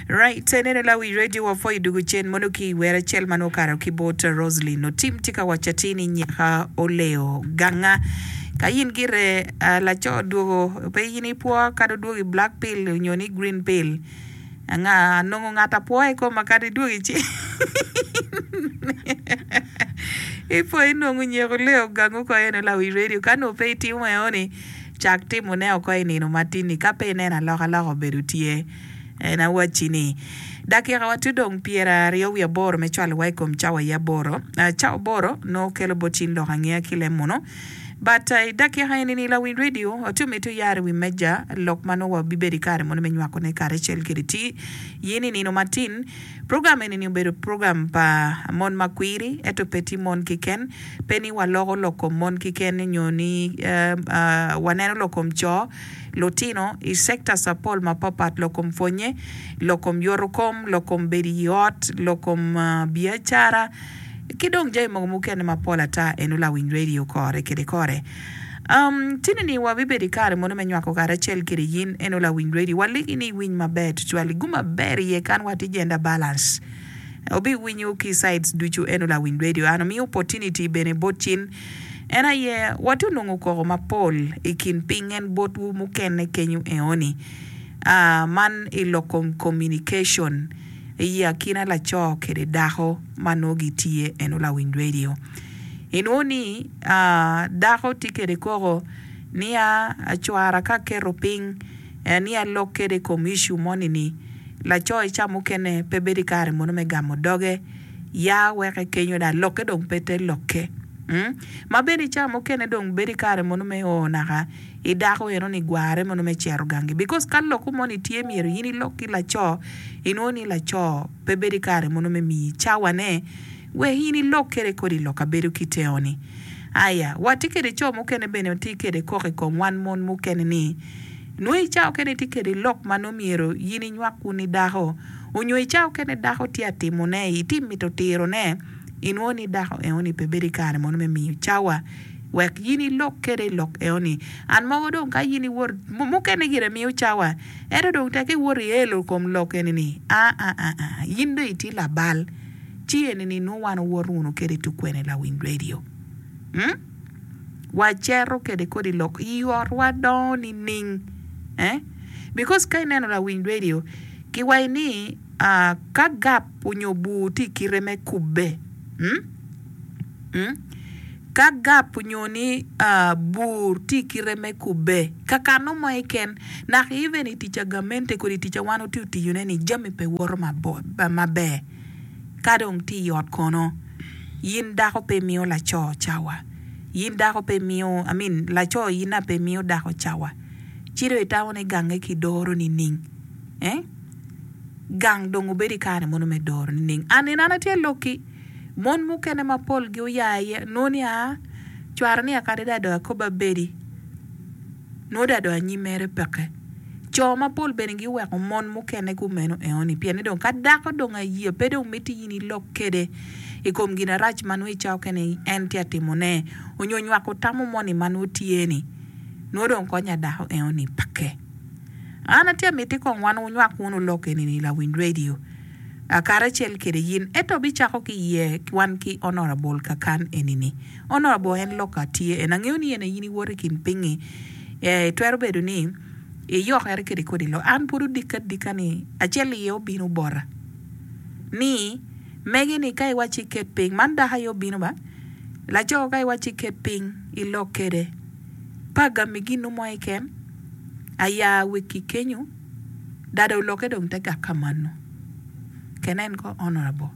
Right, ineno la wi radio wa pho idugu cen mono ki iwer acel man okato ki bot Roslyn Otim tye ka waco atir ni nyaka oleyo ganga. Ka in gire ah, laco odwogo pe in ipwo kadi odwogo i black pill onyo ni green pill. Anga anongo ngat apwo i koma kadi idwogo i cen. Ipwo inongo nyeko leyo gangu ko eno la wi radio ka nongo pe itimo eno ni Cak timone oko i nino matin-ni, ka pe ineno alokaloka obedo tye. En awacci ni, dakikawa tye dong pyeraryo wiye aboro me cwalowa i kom cawa aye aboro. Cawa aboro nongo kelo bot cing lok angeya ki lem munu. But, i dakika eni-ni, lawiny redio ti omiti oyar i wi meja lok ma nongo wabibedo i kare munu me nywakone karacel kede ti yen i nino matin. Program eni-ni obedo program pa mon ma kwiri, ento pe ti mon keken. Pe ni waloko lok kom mon keken nyo ni waneno lok kom co, lutino, i sectors apol mapatpat, lok kom pwonye, lok kom yoto kom, lok kom bedo i ot, lok kom biacara, ki dong jami mogo mukene mapol ata. Eno lawiny radio kore kede kore. Um, tini ni wabibedo i kare mono me nywako karacel kede yin, eno lawiny radio. Waligi ni iwiny maber tutwal, gumaber iye kan watye gender balance. Obiwinyo ki sides ducu en lawiny radio and omiyo opportunity bene bot cin en aye wati onongo koko mapol i kin ping en bot wu mukene kenyu eoni aa man i loko communication i akina laco kede dako ma noo gi tye eno lawiny radio inwo ni aa dako ti kede koko niya acwara ka keto ping En ni alok kede i kom icu moni ni, Laco i ca mukene pe bedo i kare mono me gamo doge. Ya weke kenyo dok lokke dong pe te lokke. Ma bene i ca mukene dong bedo i kare mono me o naka i dako eno ni gwarre mono me cito gangi. Because ka loko moni tye myero in ilok ki laco, inwongo ni laco pe bedo i kare mono me miyi cawane wek in ilok kede kodi i loka bedo ki teo ni. Aya, watye kede co mukene bene watye kede koko i kom wan mon mukene ni, Nongo i cawa okene itye kede lok ma nongo myero in inywak wuni dako, onyo i cawa okene dako tye a timo ne, iti mito tiro ne, inwongo ni dako eno ni pe bedo i kare mono me miyo cawa. Wek in ilok kede i lok eno ni. And mogo dong ka in iwor, mo, mukene gire miyo cawa, ento dong tek iwor i elo kom lok eni ni, aa, aa, in dong itye labal. Ci eni ni nongo wan owoto wunu kede i tukwene lawiny radio. Umm. wacero kede kodi lok i ot wa dongo nining eh because ka ineno lawiny radio ki waci ni ka gap onyo bur tye ikite me kubbe ka gap onyo ni bur tye ikite me kubbe kakano mo keken nak even itica gamente kodi itica wan watye otiyo ne ni jami pe woto maber. Ka dong tye i ot kono, in dako pe imiyo laco cawa, in dako pe imiyo, I mean, laco in aye pe imiyo dako cawa, ci dong itamo ni gange ki doro nining? Eh? Gang dong obedo i kare mono me doro nining? An in an atye lokki, mon mukene ma polgi oya iye, noni aa, cware ni akadada dong akob abedi. Nongo dong adok anyim mere peke. Co mapol bene giweko mon mukene kumeno enoni pien ni dong ka dako dong aya pe dong mitte in ilok kwede i kom ginarac ma nongo i cawa mukene en tye ka timone onyo nywako tamo moni ma nongo tye ni nongo dong kony a dako enoni peke. An atye ka miti kong wan wunywak wunu lok enini i lawiny radio karacel kwede in ento bicako ki iye wan ki Honourable Kakan enini. Onobo en lok ka tye en angeyo ni en aye in iwoto i kin pinyi ee twero bedo ni iyokere kede kodi lok an pud odika adika ni acel iye obino bota ni mege ni ka iwaci iket ping man dako aye obino ba laco ka iwaci iket ping ilok kede pa gami ginu mo keken aya weki kenyo. Dada oloke dong te gak ka mano. Can en ko honourable.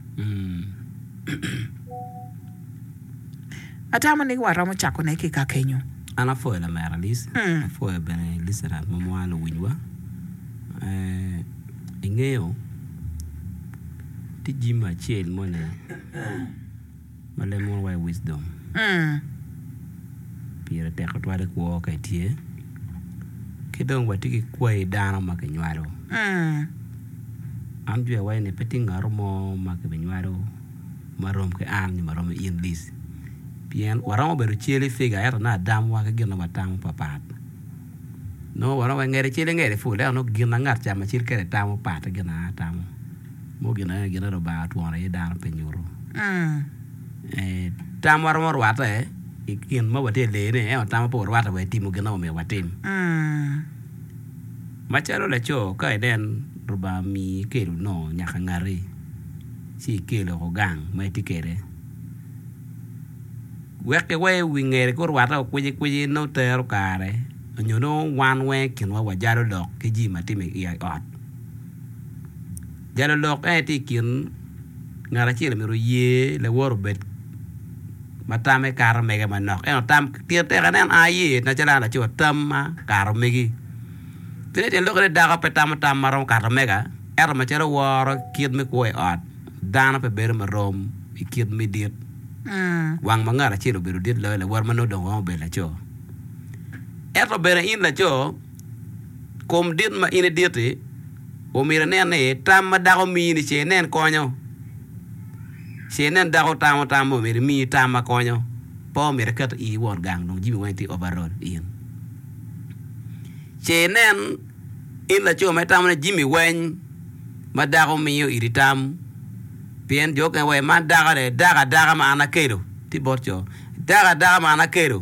Atamo ni waromo cako ne ki ka kenyo. An apwoyo lamera Alic, apwoyo bene listeners ma mwano luwiny wa. Ingeyo tye jami acel moni. Ma lemowa wa i Wisdom, pire tek tutwal i kwo ka itye. Ki dong watye ki kwayi dano ma kinywalo. An jwero iwaci ni pe tye ngat mo ma kibinywalo ma rom ki an nyo ma rom ki in Liz. Pien waromo bedo cel i figa ento nongo adamwa ki gin ma watamo papat. Nongo waromo bedo ngete cel i ngete pol ento nongo gin ma ngat acel kene tamo patte ki gin ma an atamo. Mogo gin ango gin ma Lubanga otworo iye dano pi nyuto tam ma waromo rwatte i gin ma watye ka leyone? Ento tamwa pe orwatte wa i timo gin ma omyero watim. Macalo laco ka inen Lubanga omiyi ikelo nongo nyaka ngati ci ikelo woko gang ma itye kwede wek ki wai wi ngeri ka orwatte wa kwicikwici nongo tero kare nyo nongo wan weng i kinwa wajalo lok ki jami ma tye i ot. Jalo lok en aye tye i kin ngat acel omyero oye lawote obed ma tamme kato mege manok ento tam pire tek aneno an aye macalo an laco tamma kato megi ci dong tyen lok aye ni dako pe tamo tam ma romo kato mega ento macalo woro kit me kwo i ot dano pe bedo ma rom i kit me dit wang ma ngat acel obedo dit loyo lawote ma nongo dong oromo bedo laco ento bene in laco Kom dit ma in idit-ti, omyero inen ni tam ma dako mini ce inen konyo. Ce inen dako tamo tam ma omyero imi tam ma konyo, pe omyero iket i iyi wot gang dong jami weng tye overall in. Ce inen in laco ma itamo ni jami weng ma dako miyo iri tam, pien jo mukene waci man dako-ni dako adaka ma an akelo, tye bot co, dako adaka ma an akelo.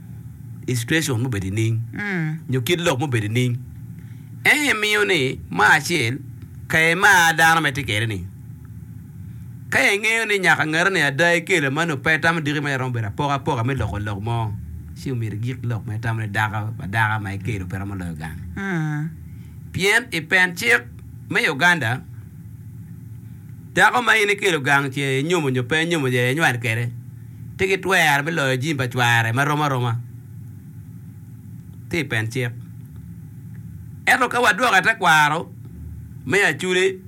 i citacion mubedo i ning nyo kit lok mubedo i ning. Ento i miyo ni mar acel ka i mar dano ma itye kede ni. Ka i ngeyo ni nyaka ngete ni ada i kelo ma nongo pe i tamo diki ma iromo bedo apoka apoka me loko lok mo ci omyero i gik lok ma i tamo ni dako pa daka ma i kelo pe romo loyo gang. Pien i pen cik me Uganda dako ma in i kelo gang ce i nyomo nyo pe i nyomo ce i nywal kede Pe gitwero me loyo jami pa cware ma rom aroma ki i pen cik. Ento ka wadwoko i tekwaro me acudi,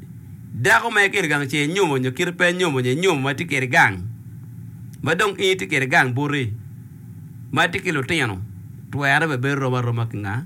dako ma ikiri gang ce inyomo nyo kit pe inyomo nyo inyomo ma tye kiri gang, ma dong in itye kiri gang buti, ma tye ki lutino, twere bene bedo rom aroma ki nga?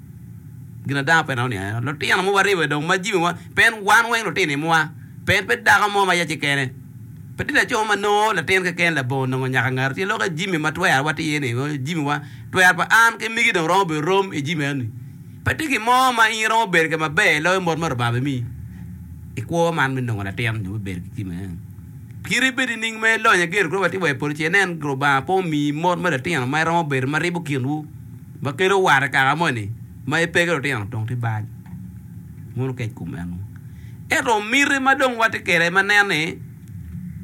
Gin ada pe aneno ni aero lutino ma waribo dong ma jamiwa pien wan weng lutino imwa, pien pe dako mo ma yaci kene, pe tye laco ma nongo latin keken labongo nongo nyaka ngato tye lok ka jami ma twera watye iye ni jamiwa twera pa an ki migi dong romo bedo rom i jami enoni. Pe tye gin mo ma in iromo bedo kwede maber loyo mot ma Lubanga bimiyi i kwo man me nongo latin nyo me bedo ki jami enoni. Kit ibed nining ma ilonyo igedo kodi watye wa i polo ci inen Lubanga pe omiyi mot me lutino ma iromo bedo ma ribo kinwu. Ma kelo owara kaka moni ma epe ki lutino dong tye bal mono okec kom meno. Ento miti ma dong watye kwede aye ma nen ni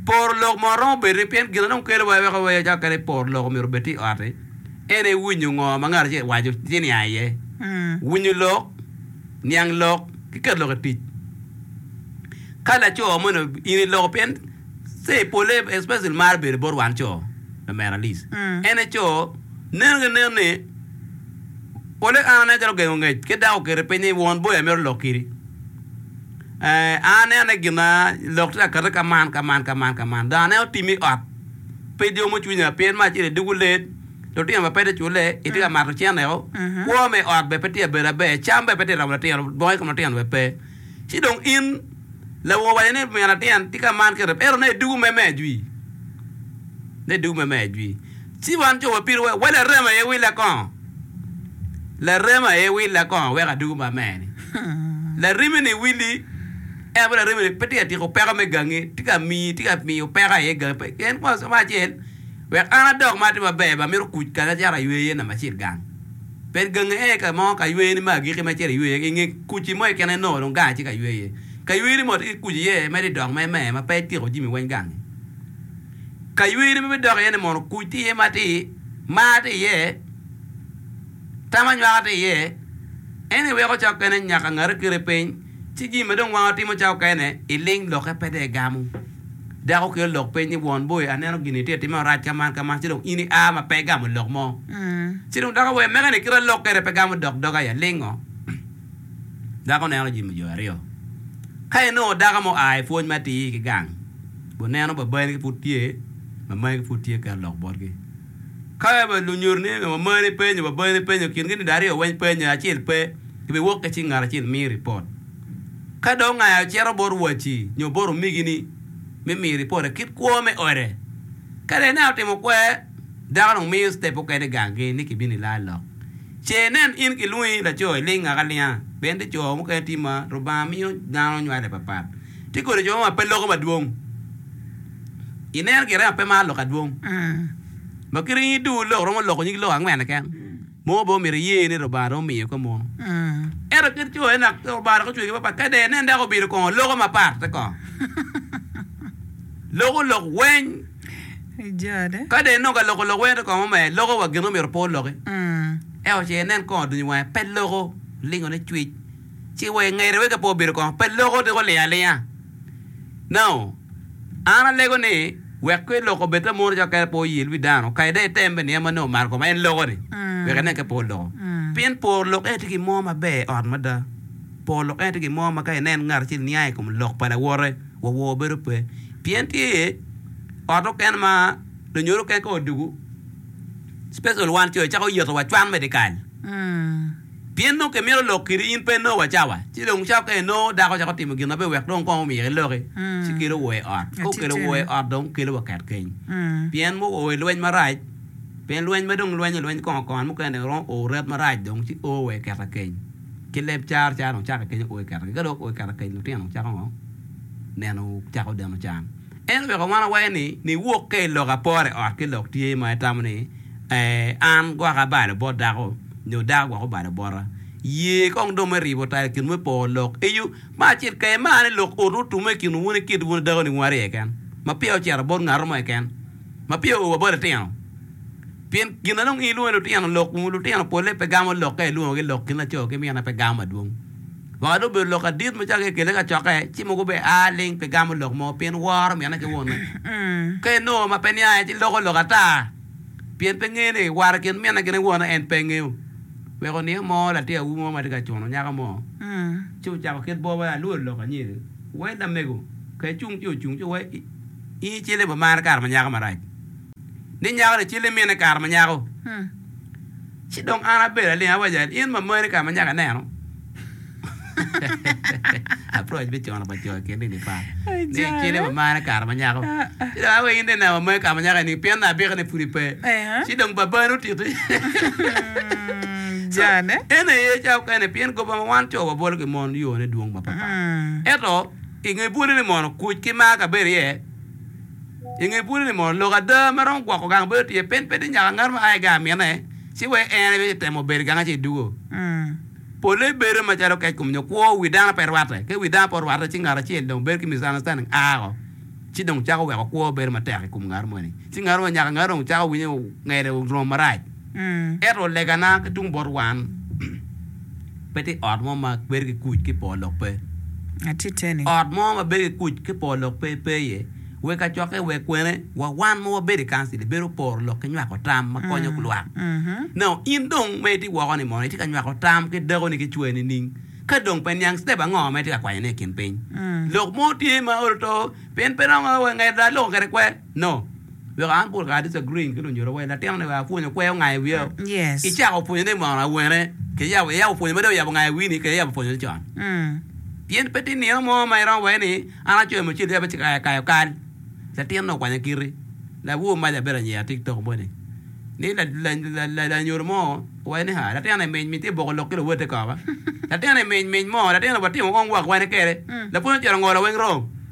poro lok mo romo bedo ni pien gin ma dong kelo wa weko wee acaka kadi poro lok omyero obed tye i ot-ti ene winyo ngo ma ngat acel waco ci niang iye. Winyo lok, niang lok ki keto lok i tic. Ka laco moni in iloko pien Ser pole especially maro bedo bot wan co lamera Liz ene co neno gi nen ni pole an aneno calo ogengo ngec ki dako okete piny ni won boyo amito lok kidi eeh an aneno ni gina lok tye ka kati ka man ka man ka man ka man dong aneno tim i ot ped yomo cwinya pien me acel idugu led lutino bene pe te cule itye ka mato cene o kwo me ot bene pe tye ka bedo maber cam bene pe tye ka romo latin bongo i kom latin bene pe Ci dong in, lawu owaco ni, 'Min atyen, tika man kite? Ento ne, dugu me mejwi. Ne, dugu me mejwi. Ci wan jo wa pidowa, wa larem aye willa kong. Larem aye willa kong, wek adugu ma mer-ni. Larimini willi, en aye larimini, pe tika tiko peko me gangi, tika miyi, tika miyo peko aye gangi, pe. Pien kwongo, acel, wek an adok ma atye maber, ba amito kuc kanya acito aywe iye namba acel gang. Bed gangi aye ka mo ka yweyoni me agikki ma icito iywe iye, i nge kuci mo keken aye nongo dong gangi tye ka ywe iye. Ka yweyoni modo tye ki kuci iye, medo idok me me ma pe ityeko jami weng gangi. Ka yweyoni ma bidok iye-ni mono kuc tye iye matir, mar tye iye, tam anywaka tye iye, en aye weko ca okene nyaka ngati okiri piny, ci jami ma dong wango timo ca okene iling lokke pe dong igamo. Dako kelo lok peny ni, Won boi, aneno gin itye ka timme orac ka man ka man, ci dong in ia ma pe igamo lok mo. Ci dong dako wer mege ni, Kit alok kwede pe gamo dok doga aye alingo. Dako neno jami jo aryo. Ka inongo dako mo oa i pwony matir ki gang, guneno babani-gi pud tye, mamagi pud tye keto lok botgi. Ka wa lunyuto ni wamani penyo, waboni penyo kingi ni aryo weny penyo acel pe, ibiwok ki cing ngat acel mii ripot. Ka dong ongaya ocito bot waci nyo bot omigi ni me miyo ripote kit kwo me ode. Ka dong ineno otimo kwer, dako dong miyo step mukene i ganggi ni kibino i laa lok. Ce inen in kilwongi laco iling ngaka alinga, pien ni co mukene tye ma Lubanga miyo dano nywale papat. Tye kodi co ma pe loko madwong. I neno gire ape maro lok adwong ma kit ringi duwu lok romo loko nyig lok angwen keken mogo bene omyero iye ni Lubanga romo miyo kop mono. Ento kit jo ena Lubanga dok ocweyogi mapat ka dong inen dako obino kongo loko mapat te kongo loko lok weng ka dong inongo ka loko lok weng te kongo mamer loko wa gin omyero pe oloki ento ce inen kongo dunyo wange pe loko olingo ne cwec ci wa ingete weka pe obino kongo pe loko tika olingo alinga no. An alego ni, wek kong iloko bed ta mono calo kadi pe oyil wi dano, kadi dong item bene niye ma nongo omaro kome, en loko-ni, wek inen ka pe oloko. Pien poro lok ene tye gin mo maber i ot mada. Poro lok ene tye gin mo ma ka inen ngat acel niang i kom lok pa lawote, wa wor bedo pe. Pien tye iye ot mukene ma lunyodo mukene ka odwogo, special wan co, ecako yetowa cwan me dyekal. Pien nongo kimito lok kiri in pe nongo wacawa, ci dong cawa ka inongo dako cako timo gin maber wek dong kong omyek iloki, ci kelo wor i ot. Ka okelo wor i ot dong kelo wa ket keny. Pien mo o i lweny marac, pien lweny ma dong lwenyo lweny kongo kongo an mukene dong iromo o ret marac dong ci o wa i keta keny. Ki leb caro caro dong cako i kenyo o i keta keny. Ka dong o i keta keny lutino dong cako ngo? Neno cako deno can. Ento weko wan awaco ni niwok ka i lok apore ot ki lok tye ma itamo ni an gwoko abalo bot dako. nyo daa gwoko balo bota. Ye kong dong me ribo tayo kinwu me poro lok eyo ma acel keken, ma ane lok oto otume i kinwu wun ikit wun dako niwu aryo keken, ma peya ocito bot ngatu mo keken, ma peya oa bot litino. Pien gin adong in ilwongo ni lutino lok, kun lutino polle pe gamo lok ka ilwongogi lok kin laco ki mine pe gamo madwong. Waka dong obedo lok adit ma cake ikele kacokke, ci mogo be a ling pe gamo lok mo, pien woro mine ki wune. Ka inongo ma pe niaye ci loko lok ata. pien pe ngeyo ni war i kin minne gin ki wone en pe ngeyo. Wek oniang mo latin awobi mo ma tye ka cuno nyako mo, ci ocako kit bor wai alwor lok anyir, Wai lamego, ka icung ci ocung ci wai in icel i boma mara kare ma nyako marac ni nyako ni icel i minne kare ma nyako. Ci dong an abedo aling awaco en, In mamari ka ma nyaka ineno? Approach me cono pa co i kin dini par ni kine ma marre kare ma nyako. Ci dong awaco in dong ineno mamari ka ma nyaka ining pien nabika ne pud ipe. Ci dong babani otiti. So, ene aye ca okene pien goba ma wan co wabolo ki mon yone dwong mapapat. Ento, i nge bwolli ni mono kuc ki mar kabedo iye, I nge bwodi ni mono lok ada ma romo gwoko gang bedo tye pien pe tye nyaka ngat ma a i gang mine ci wek en aye temo bedo i gang-nge ci dwogo. Polle bedo macalo keckom nyo kwo, wi dano pe rwatte. Ka wi dano pe orwatte ci ngat acel dong bedo ki misunderstanding a woko ci dong cako weko kwo bedo matek i kom ngat moni ci ngat moni nyaka ngat dong cako winyo ngete orom marac. Ento legana ki tung bot wan, pe tye ot mo ma bedo ki kuc ki po lok pe. Ot mo ma bedo ki kuc ki po lok pe, pe iye. Wek kacokke, wek kwene, wa wan ma wabedo i kancil ebedo poro lok ki nywako tam ma konyo lwak. Nao in dong ma itye woko-ni mono itye ka nywako tam ki dakoni ki cwer nining? Ka dong pe niang, citep ango ma itye ka kwanyone i kin piny? Lok mo tye ma olo to pien pe romo wangedo da loko kwede kwer. No. Wek an pol kare disagree ki lunyira wai latin ni wek apwonyo kwer onga i wiya o. Yes. Icako pwonyo ni mono awene ki yabo i yabo pwonyo ma dong oyabo onga i wi ni kede yabo pwonyo ni con. Pien pe tye nino mo ma iromo waye ni an acoyo me cel yabo cika kayo kal. Latin ni okwanya kiti. Labwor mac abedo anyira tik tok moni ni la lanyoro mo owaco ni haa latin ni mic mic ti boko lok ki luwote koko. Latin ni mic mic mo latin ni watimo ong wak wene kede. Lapwony ocito ngolo weng rom.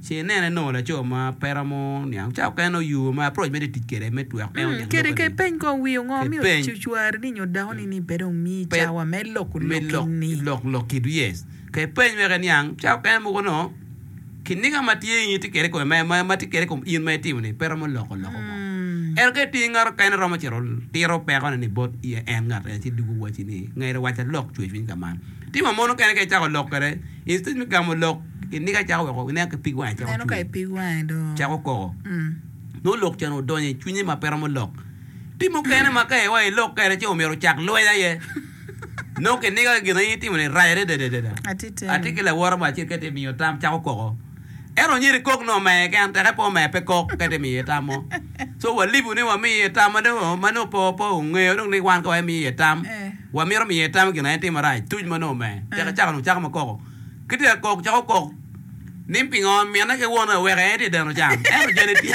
Ce inene nongo laco ma pe romo niang cawa mukene oyubo ma approach mere tic kwede me tweko en oniang Kede lok-ki-ni. ke peny kong wi ongo miyo Kipeny. cucwari-ni nyo dakoni ni pe dong miyi Pe- cawa me loko me lok lok-ki-ni. lok lok kit yes ke peny wek eniang cawa mukene mogo nongo kiniga ma tye in itye kede kome ma ma ma tye kede kom in ma itimo ni pe romo loko loko mo Mm. ento ka itye ngat okene romo cito tiro peko ne ni bot i en ngat en ci dugo waci ni ngair waca lok cwecwiny ka man Tim ma mono kene ka icako lok kwede. Instead me gamo lok i niga cako weko ineno ka ipig wangi cako cwinyi cako koko. Nongo lok cen odonyo i cwinye ma pe romo lok. Tim mukene ma ka iwai ilok kwede ci omyero ocak lweny aye. Nongo kiniga ki gin aye itimo-ni rac adada adada. Atye ki lawote mo acel ka tye ka miyo tam cako koko. En onyedo i kok nongo mere keken tek epo mere pe kok ka tye miyo iye tam mo. So walibu ni wami iye tam ma dong ma nongo pe pe ongeyo dong ni wan ka wamiyo iye tam wamito miyo iye tam i gin ma en timo marac tuc ma nongo mere tek ecako nongo cako ma koko ki tye ka kok cako kok ni pingo mine ki wone oweko en tye deno can ento jene tye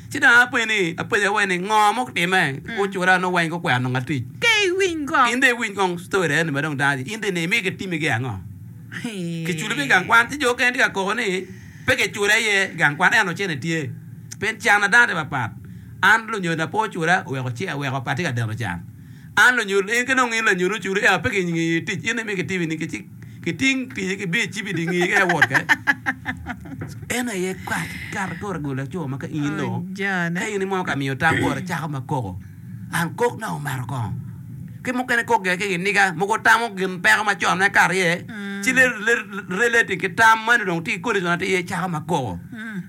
Ci dong apenyo ni, apenyo we ni ngo ma otime ocura nongo weng gukwero nongo atic. In dong iwiny kong story eni ma dong dano aye in dong ine imege timi gi ango. Kiculo pi gang kwan ci jo okene tye ka koko ni pe kicule aye gang kwan ento cene tye pien can na dano tye papat an lunyodo na pe ocula oweko ce aweko pe atye ka deno can. An lanyut, in ki dong in lanyut ocudo eka pe kingi tic in imi kitibi ni ki cik ki ting tic ki biyo icibi di ngi eka iwot kede. Eno aye kat kat kore gol laco ma ka in dong ka in imo ka miyo tam kore cako ma koko an kok na omato kongo ki mukene kok gire ki giniga mogo tamo gin peko ma con me kato iye ci relating ki tam mani dong tye ki kodi con atir iye cako ma koko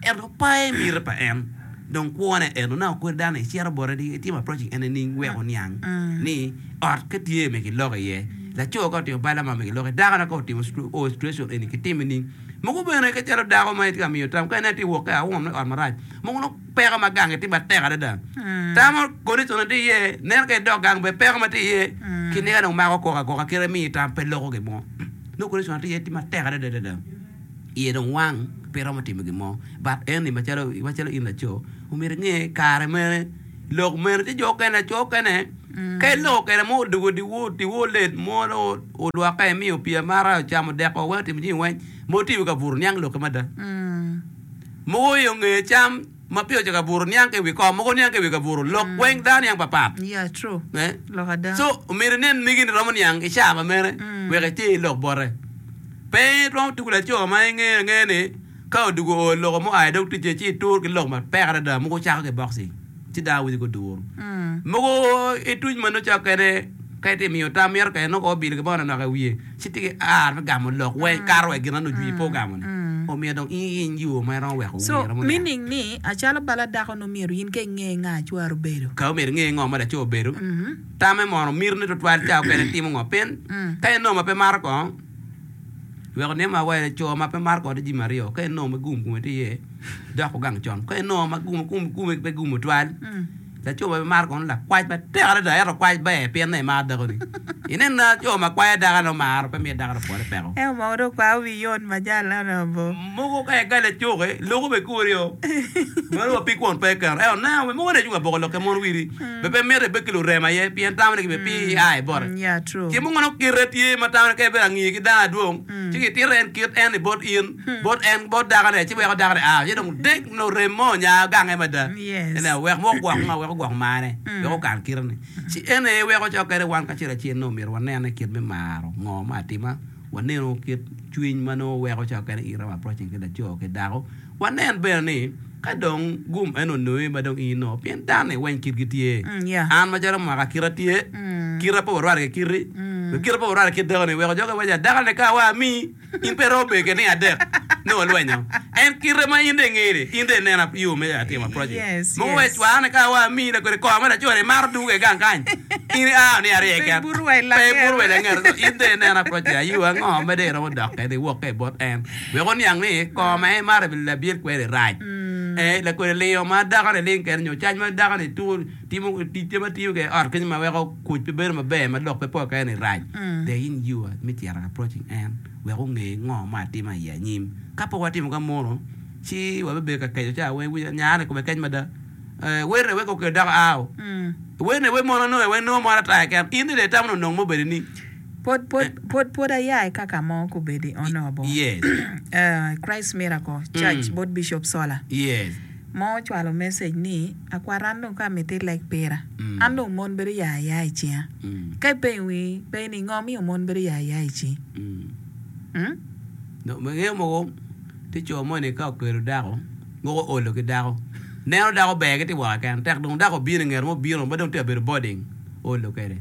ento paye miti pa en. Dong kwone eno na okodi dano ni icito bote ni itimo approaching en nining wek oniang ni ot ka tye me kiloko iye, laco ka otimo balla ma me kiloko iye, dako na ka otimo o situation eni kitime nining. Mogo bene ka calo dako ma itye ka miyo tam ka inen tye wok ka aum ni ot marac mogo nongo peko ma gange tye matek adada. Tamo condition na tye iye, neno ka idok gang bene peko ma tye iye kiniga dong mako koko akoka kit imiyo tam pe loko gin mo. Nongo condition na tye iye tye matek adada adada. iye dong wang pe romo timo gin mo but eni macalo in laco omyero inge kare mene lok mene tye jo okene laco okene ka iloko kene mo odwogo odiwor or late mo olwoke emiyo pii amata ocamo odeko weng otimo jami weng ma otye i wi kabuto niang lokke mada mogo oyonge cam. ma pire ocako abuto niang ki i wi kom mogo niang ki i wi kabuto lok weng dano niang papat so omyero inen megi ni romo niang i caa ma mene wek iter i lok bote pe itwom tuku laco ma ingeyo angeya ni ka oduku oo loko mo aye dog ticce ci itur ki lok mapek adada mogo cako ki boxing ci dano winy ko duru mogo ituc ma nongo cok kene ka itye miyo tam mito kene nongo ko obilo gin mo manok nok i wiye. ci tye ki ar me gamo lok wa ikato wa i gin ma nongo jwii pe ogamo ni o myero dong in iyiny yoo ma iromo weko So wii romo yat. meaning ni acalo bala dako nongo myero in ka inge nga acwar obedo. Ka omyero inge ngo ma laco obedo, tame mono, mitine twatwal ca okene itimo ngo pien ka inongo ma pe maro ko weko nimo ma wa co ma pe maro ko tye jami aryo ka inongo ma gum kome tye iye dok ogang con ka inongo ma gum gum gum pe gumo twal. Laco ma pe maro kono lakwac matek adada, ento kwac ber pien ni emaro dakoni. Inen laco ma kwayo dako ento maro pe miyo dakone pwole peko. Ento mogo dong kwao wi yon majal eno dong abo. Mogo ka i gali acuki, loko be kuri o. Meno wa pi kwon pe i keno. Ento neno, mogo ni acung ka boko lok ka mon wiri, be pe mito ibed ki lurem aye pien tamo ni kibe pi i ai bote. Yeah, true. Ki mogo nongo kite tye ma tamo ni ka ibedo angi ki dano adwong, ci kitito en kit en ni bot in. bot en, bot dakone, ci weko dakone a, ci dong dek nyo rem mo onya gange mada, ineno, wek wok gwok ngo, wek ogwok marne, wek okan kitene. Ci en aye weko cok kene wan kacel acel nongo omyero wanene kit me maro ngo me atima, wanenu kit cwiny ma nongo weko cok kene iro approaching ki laco ki dako, wanen bene ni ka dong gum eno onongi ma dong in nongo, pien dano-ni weng kitgi tye, an macalo mwaka kita tye, kita pe warwate ki kiti, dong kita pe warwate ki kit dakoni, weko jogi waco dakoni ka awa amii. In pe iromo bedo gitneng adek nongo ilwenyo en kite ma in dong ingene in dong inen yo me timo approach mogo wek cwakne ka wa amiyi lakodi kor ma laco ni maro duge gang kany in ia oniya arye keken pe iburu wa ilangete in dong inen approach ya yo ango ma dong iromo dok kede iwok ka ibot en wek oniang ni kor ma en maro labir kweri rac lakodi lingo ma dakoni ling kede nyo cac ma dakoni timo ticce ma tiyo kwede i ot kenyo ma weko Kuc pe bedo maber ma lok pe pol keken i rac. Dek in yiwa me cito ka approaching en wek onge ngo ma atima i anyim. Ka pok watimo ka mono, ci wabibedo ka keco ca weng winy nya ni kome kec mada. Eh, werre wek okelo dako aao. Werre wek mono nonge wek nongo moro ataya keken. In dede itamo ni onongo mo bedi ni. Pwod, pwod, pwod, pwod aya i kaka mo kubedi onobo. Yes. Eh, Christ Miracle Church bot Bishop Solar. Yes. mo ocwalo message ni, Akwar an dong ka amiti ileg pira, an dong mon bedo ya aya i cinga. Ka ipenyo wi pe ni ngo miyo mon bedo ya aya i cingi? Hum? Dong me ngeyo mogo ti co moni ka okelo dako moko olo ki dako neno dako ber giti woko keken tek dong dako obino ingeto mo bino ma dong ti abedo boarding olo kede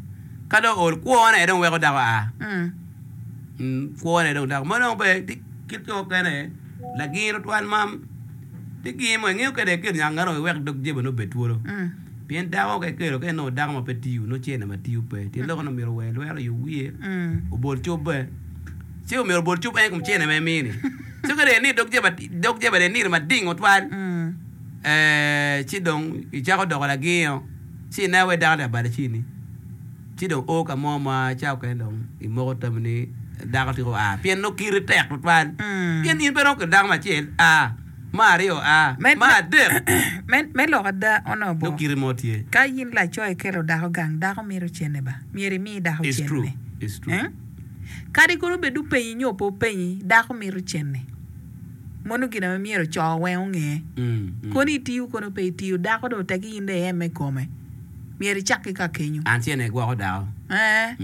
ka dong ool kwo ne dong weko dako a kwo ne dong dako ma dong pe ti kit yo mukene lagir twatwal ma Tic gin mo ingeyo kede kelo nyang arogi wek dog jeba nongo obed twolo. Pien dako ka ikelo ka inongo dako ma pe tiyo nongo cene ma tiyo pe. Tye lok nongo myero ower lwere oyub wiye obol cubbe. Ce omyero obol cub en i kom cene ma emiyo ni. Ce kede ni dog jeba dog jeba dong iniro mading tutwal ci dong icako doko lagingo ci ineno wai dako ni abalo cini. Ci dong o ka mo ma ca okene dong imoko tami ni dako tika oa, pien nongo kiri tek tutwal. Pien in pe romo kede dako me acel a, me aryo a, me adek. Me lok ada, onongo bo ka in laco ikelo dako gang, dako mito cene ba, myero imi dako cene. Kadi kono bed openyi nyo pe openyi, dako mito cene. Mono gin ma myero co weng onge. Kono itiyo kono pe itiyo, dako dong otegi in dong ieme kome. Myero icak ki ka kenyo. An tyene igwoko dako. Eeh.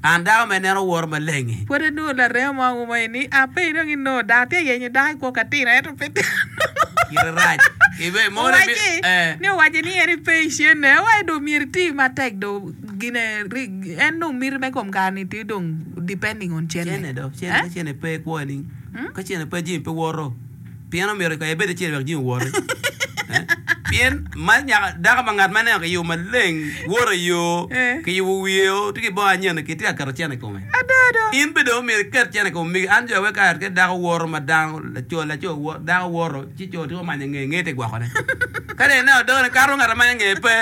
An dako ma ineno woro maleng-ngi. Pwod anongo laremo ma ouma i ni, Ah, pe idong inongo dako. Atye ka yenyo dako i kwo ka tino, ento pe dano. Kite rac. Ibe moni bi, Owacci eeh. ni owaco ni en ipe i cene. Wai dong myero iti matek dong gine ri, en dong miti me kom kare ni ti dong depending on cene. Cene do, cene, ka cene pe ikwoyo nining? Ka cene pe jami pe woto. Pien omyero kaya ebed acel wek jing owoti. Pien mal nyaka dako ma ngat ma ineno ki yo maleng, woto i yo, kiyubo wiye o, tye ki bongo anyen-ni, kitye ka keto cente i kome. In bene dong omyero iket cente i kom omigi. An jo awek kare ka dako woto ma dano, laco, laco woto, dako woto, ci co tiko manyo ngeye, ngeye tye gwokone. Ka dong ineno dogone kato, ngat amanyo ngeye pe,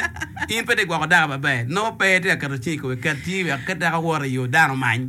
in pe tye gwoko dako maber. Nongo pe itye ka keto cingi i kome. Ket cingi wek ka dako woto i yo, dano omany.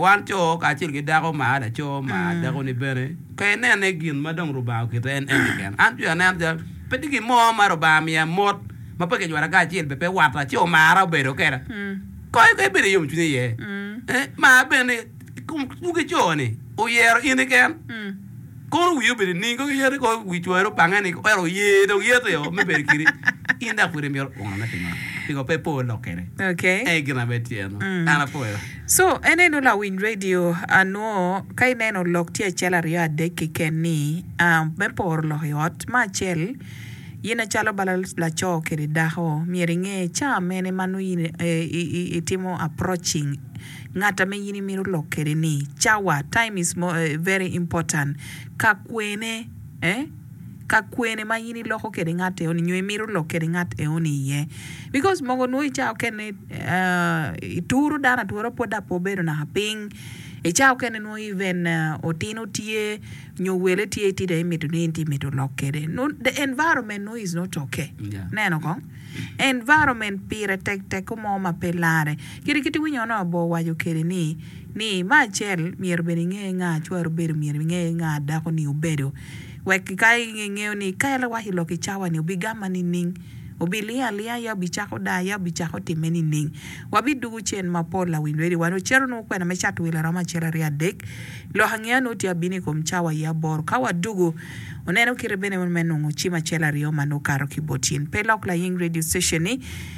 Wan co kacel ki dako ma a laco ma dakoni bene, pe inene gin ma dong Rubanga oketo en en keken. An cwiya neno calo pe tye gin mo ma Rubanga miya mot ma pe kijwara kanya acel bene pe wata ci omara obedo kweda. Kony kong ibed ki yomcwiny iye. Mar bene ni i kom dwogi co-ni, oyero in keken. Kono wii obed i ningi, kono yati kono wii cwari obange ni ero oye dong yati o me bedo kiri. In dok pwede imito kwono ne pingo? Pingo pe ipo lok kede? Okay. Ey gin na be tye eno. Mm. An apoyo. So en eno lawiny radio anwo ka ineno lok tye acel aryo adek kiken ni ah, me poro lok i ot ma acel yin acalo bala laco kede dako myero inge ca mene ma nongo yin eh, i- i- itimo approaching Ngat ame in imito lok kede ni cawa, time is very important, ka kwene, eh, ka kwene ma in iloko kede ngat eo ni nyo imito lok kede ngat eo ni iye. Because mogo nwo i cawa okene, eh, ituro dano atura pwod dok pe obedo naka piny. I cawa okene nwo even otino tye nyo wele tye iti dong imito ni in ti mito lok kede. No, the environment nwo is not okay. Yeah. Ineno kong? Environment pire tek teko mo ma pe larre. Kit kit winyo onongo obor waco kede ni, ni me acel myero bene inge nga cwari obedo myero inge nga dako ni obedo wek ki ka ingeyo ni ka ele waco lok icawa ni obi gamma nining obi linga alinga ya obi cako daa ya obi cako time nining wa bi dugu cen ma pol lawiny lwedi wa nongo cito nongo kwena me cato wil aromo acel aryo adek lok angeya nongo tye abino ikom cawa ya aboro ka wa dugu oneno kite bene me nongo cim acel aryo ma nongo kato ki bot cin pe lok laying radio station ni.